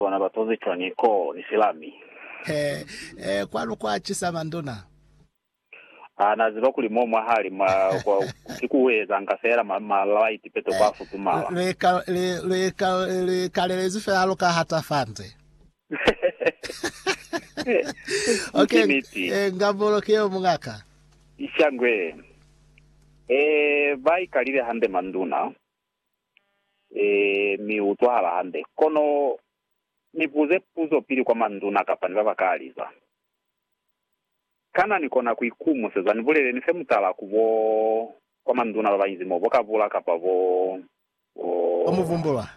Bona ba tozi cwa ni ko ni silami. He, he, kwanu kwa cisa manduna. Ha na ziba kuli mo mwa hali mwa kwa ki ku ezanga fela ma, ma light peto kwa futumala. Lu ika, lu, lu ika, lu ikalelezi fela lu ka hata fande. Ok, Ki niti. eh, ngambolo ki yeo mungaka. Shangwe. Eh, ba ikalile hande manduna. Ee, mi u utwahala hande. Kono ni buze puzo pili kwa manduna kapa ni ba ba kaliza. Kana ni kona ku ikumuseza? Ni buleleni fe mutala ku bo, kwa manduna ba ba inzi mo, bo Kabula kapa bo, bo. Bo Muvumbulwa.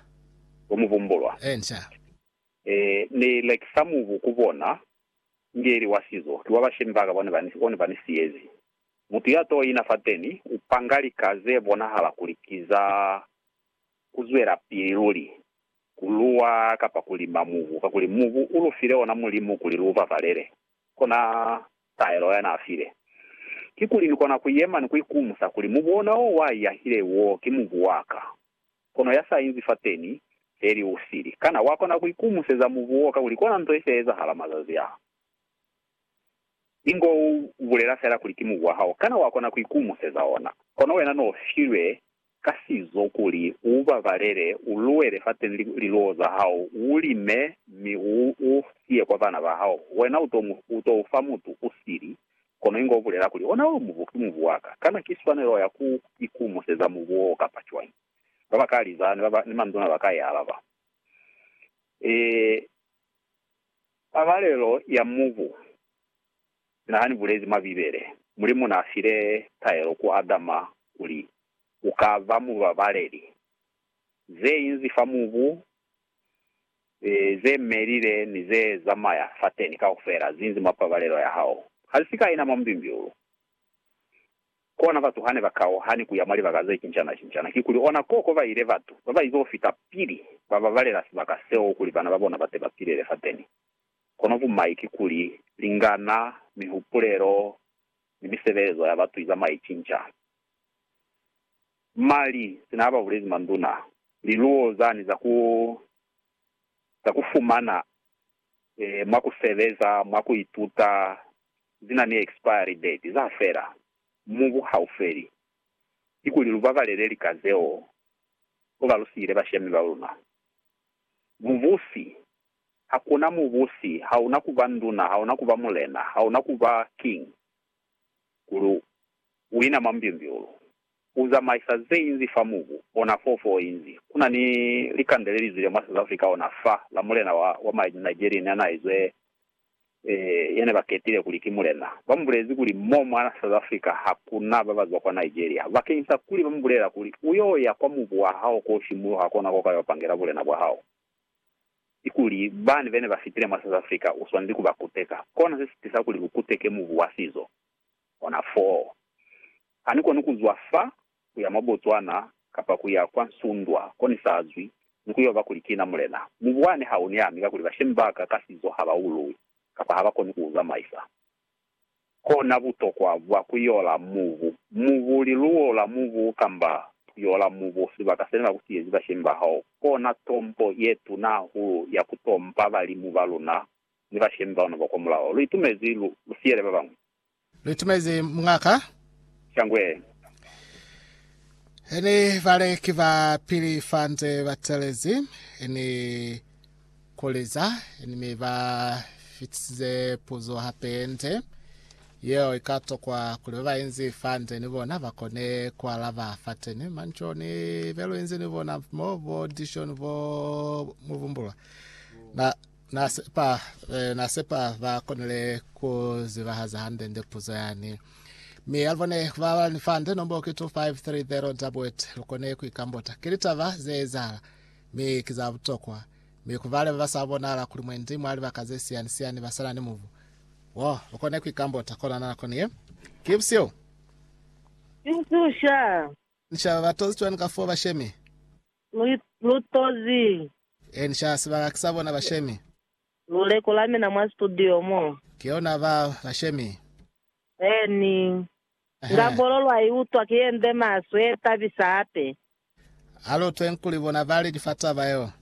Bo Muvumbulwa. Ee, nca. Ee, Ni lekisa mubu ku bona, Ngeli wa sizo, ki wa bashemi ba ka, bone ba ni, bone ba ni siyezi. Mutu ya t'o ina fateni u panga lika ze bonahala kuli ki za ku zwelapili luli, ku luwa kapa ku lima mubu, kakuli mubu u lu file ona Mulimu kuli lu babalele. Kona taelo ya n'a file. Kikuli ni kona ku yema ni ku ikumusa kuli, Mubu ona o wa iyahile wo ki mubu wa ka. Kono ya sa inzi fateni, feli u sili. Kana wa kona ku ikumuseza mubu wo kakuli kona nto ye si ya ezahala mazazi a? Ingo u bulela fela kuli ki mubu wa hao, kana wa kona ku ikumuseza ona? Kono wena no filwe ka sizo kuli u babalele, u luwele fateñi liluwo za hao, u lime, mi u u siye kwa bana ba hao. Wena u to mu, u to u fa mutu u sili, kono ingo u bulela kuli, Ona yo mubu, ki mubu wa ka. Kana ki swanelo ya ku ikumuseza mubu wo kapa cwañi? Ba ba ka liza, ni ba ba, ni manduna ba ka i alaba, Ee. Pabalelo ya mubu na ha ni bulezi mwa Bibele. Mulimu na file taelo ku Adama kuli, U ka ba mubabaleli. Ze inzi fa mubu, ze melile ni ze zamaya fateni kaufela zi inzi mwa pabalelo ya hao. Ha li si ka ina mwa mubimbiulu. Kona batu hane ba kauhani kuya mwa libaka ze cincana-cincana, kikuli ona koko ba ile batu baba izo fita pili ba babalela sibaka seo kuli bana ba bona bate ba pilele fateni. Kono bumai kikuli, lingana, mihupulelo, ni misebelezo ya batu izama icinca. Mali, sina haba bulezi manduna, liluwo zani za ku za ku fumana. mwa ku sebeza, mwa ku ituta, zi na ni expiry date, za fela. Mubu ha u feli. Kikuli lu babalele lika zeo ko ba lu siile bashemi ba luna. Mubusi, hakuna mubusi, ha una ku ba nduna, ha una ku ba mulena, ha una ku ba king, kuli u ina mwa mbyumbyulu. Ku zamaisa ze inzi fa mubu ona foo fo o inzi. Ku na ni likande le li zwile mwa South Africa ona fa la mulena wa, wa ma Nigerian ya n'a izwe, eh, ya ne ba ketile kuli ki mulena. Ba mu bulezi kuli mo mwa South Africa ha ku na ba ba zwa kwa Nigeria. Bakeñisa kuli ba mu bulela kuli, U y'o ya kwa mubu wa hao k'o simuluha kona ko ka y'o pangela bulena bwa hao. Kikuli, bani be ne ba fitile mwa South Africa u swaneli ku ba kuteka. Kona se si tisa kuli ku kuteke mubu wa sizo. Ona foo. Ha ni koni ku zwa fa ku ya mwa Botswana kapa ku ya kwa Nsundwa ko ni sa zwi, ni ku yo ba kuli kina Mulena. Mu bwane ha u ni ami, kakuli bashemi ba ka ka sizo ha ba ulwi, kapa ha ba koni ku u zamaisa. Ko na butokwa bwa ku yola mubu, mubu, liluwo la mubu, kamba ku yola mubu, sibaka se ne ba ku siyezi bashemi ba hao. Kona tompo ye tuna hahulu ya ku tompa balimu ba luna ni bashemi ba luna ba kwa mulaho. Lu itumezi lu, lu siyele ba bañwi. Lu itumezi Muñ'a ka. Shangwe. Ini bale ki ba pili fa nze ba telezi, ini kuli za, ini mi ba fitisize puzo hape ye nde. Yeo i ka tokwa kuli ba ba inzi fa nde ni bona ba kone ku alaba fateni. Mani co ni be lu inzi ni bona mo, bo Dishon, bo Muvumbulwa, na. Na sepa, eh, na sepa ba konile ku zibahaza hande-nde puzo yani. Mi ya bone ba ba ni fande nombo ke 2530 Dabwet lu kone ku ikambota. Ke litaba ze ezahala, mi ki za butokwa. Mi ku bale ba ba sa bonahala kuli mwendi mwa libaka ze siyani-siyani ba sala ni mubu wo, lu kone ku ikambota kona na nakoni ye. Ki busio. Insusha. Ni shaba ba tozi cwani ka fo bashemi? Lu lu tozi. En sha sibaka sa bona bashemi. Lu lekola mina mwa studio mo. Ki yona ba bashemi. En. Nga bolo lwa i utwa ki ye nde maswe ye tabisa hape. Alutwe nkuli bona ba li ki fa taba yeo.